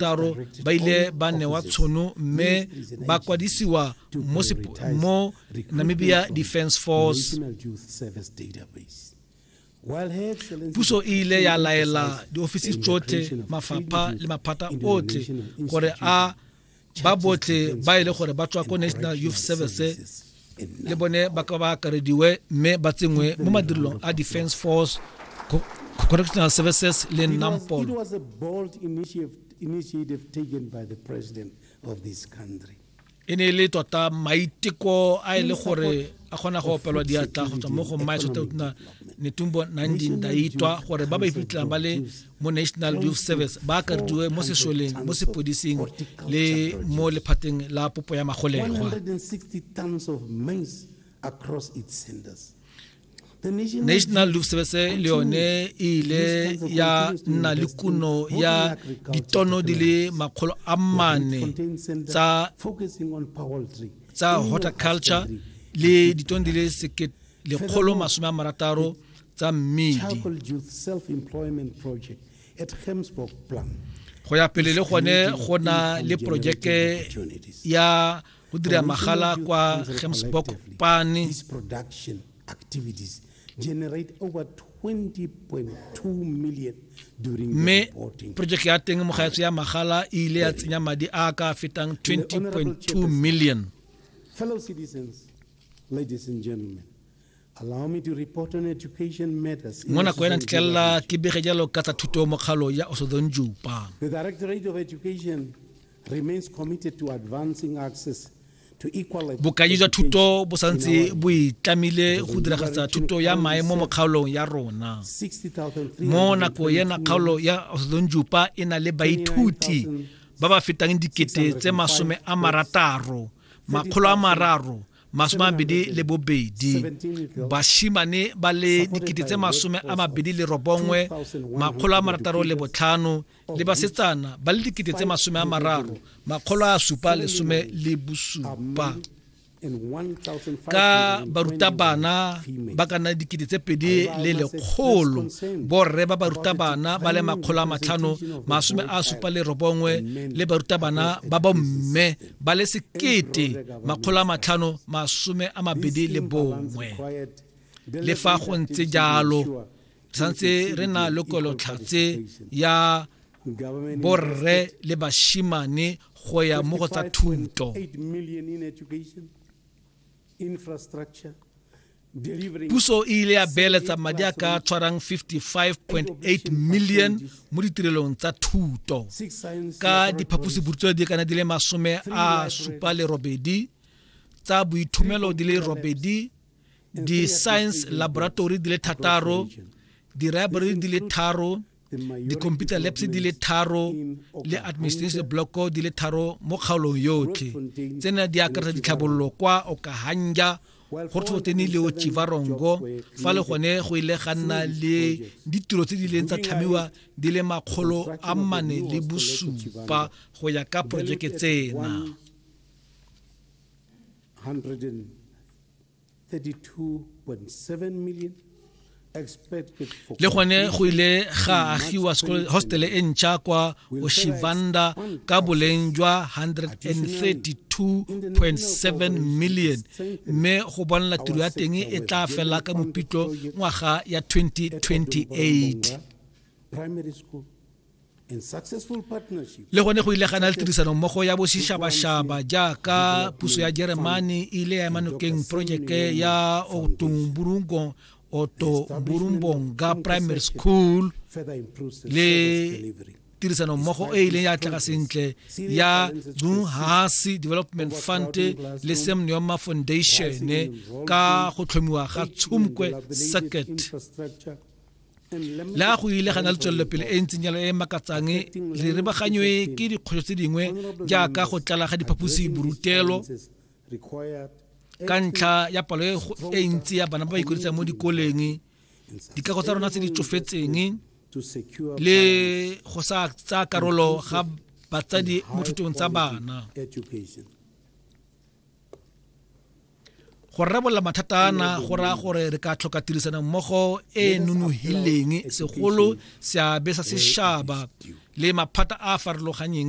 karo ba ile ba newa tshono mme ba kwadisiwa mo, mo namibia defense force puso e ile ya laela diofisi tsotlhe mafapha le maphata otlhe gore a ba botlhe ba e le gore ba tswa ko national youth service le bone ba ka ba akarediwe mme ba tsenngwe mo madirelong a defense force correctional services le nampol e ne e le tota maiteko a e le gore a kgona go opelwa diatla go tswa mo go mmaetsototna netumbo nandindaitwa gore ba ba iphitlhelang ba le mo national youth service ba akarediwe mo sešoleng mo sepodising le mo lephateng la popo ya magolegwa national youth service le yone e ile ya nna le kuno ya ditono di le makgolo a mane tsa tsa horticulture le ditono di le sekete lekgolo masome a marataro tsa mmedi go ya pele le gone go na le porojeke ya go dira magala kwa gemsburg pane generate over 20.2 million mme projeke ya teng mogaetso ya magala e ile ya tsenya madi a ka fetang 20.2 million mo nako ena ntitlelela ke bege jalo ka tsa thuto mo kgalo ya osodon jupa bokaji jwa thuto bo santse bo itlamile go diragatsa thuto ya maemo mo kgaolong ya rona mo nako ena kgaolo ya osodon jupa e na le baithuti ba ba fetang dikete tse masome a marataro makgolo a mararo masome mabedi le bobedi bashimane ba le dikete tse masome a mabedi le robongwe makgolo a marataro le botlhano le basetsana ba le dikete tse masome a mararo makgolo a supa lesome le bosupa ka barutabana ba ka nna dikete tse pedi le lekgolo borre ba barutabana ba le makgolo a matlhano masome a supa le robongwe le barutabana ba bomme ba le sekete makgolo a matlhano masome a mabedi le bongwe le fa go ntse jalo santse re na le kolotlhatse ya borre le bashimane go ya mo go tsa thuto puso e ile ya beeletsa madi a ka tshwarang 55.8 million mo ditirelong tsa thuto ka diphaposiburutso di kana di le masome a supa le robedi tsa boithomelo di le robedi di-science laboratory di le thataro di-library di le tharo dikhomputara labs di le tharo le administration blocko di le tharo mo kgaolong yotlhe tsena di akaretsa ditlhabololo kwa okahanja go tshotene le ochivarongo fa le gone go ile ga nna le ditiro tse di leng tsa tlhamiwa di le makgolo a mane le bosupa go ya ka porojeke tsena le gone go ile ga agiwa hostele e ntšha kwa oshivanda ka boleng jwa 132.7 million mme go bonela tiro ya teng e tla fela ka mopitlo ngwaga ya 2028 le gone go ile gana le tirisanommogo ya bošišabašaba jaaka puso ya jeremane e ile ya emanokeng projeke ya otomburungo oto burumbonga primary school le tirisano mmogo e ileng ya tlaga sentle ya dunhasi development fund le semneoma foundation ka go tlhomiwa ga tshomkwe circuit le ga go ile ga na le tswelelopele e ntseng jalo e e makatsang re rebaganywe ke dikgwetlho tse dingwe jaaka go tlala ga diphaposi borutelo ka ntlha ya palo e, e ntsi ya bana ba ba ikwadisang mo dikoleng dikago tsa rona tse di tsofetseng le go sa tsaya karolo ga batsadi mo thutong tsa bana go rarabolola mathata ana go raya gore re ka tlhoka tirisano mmogo e e nonogileng segolo seabe sa sešaba le maphata a a farologanyeng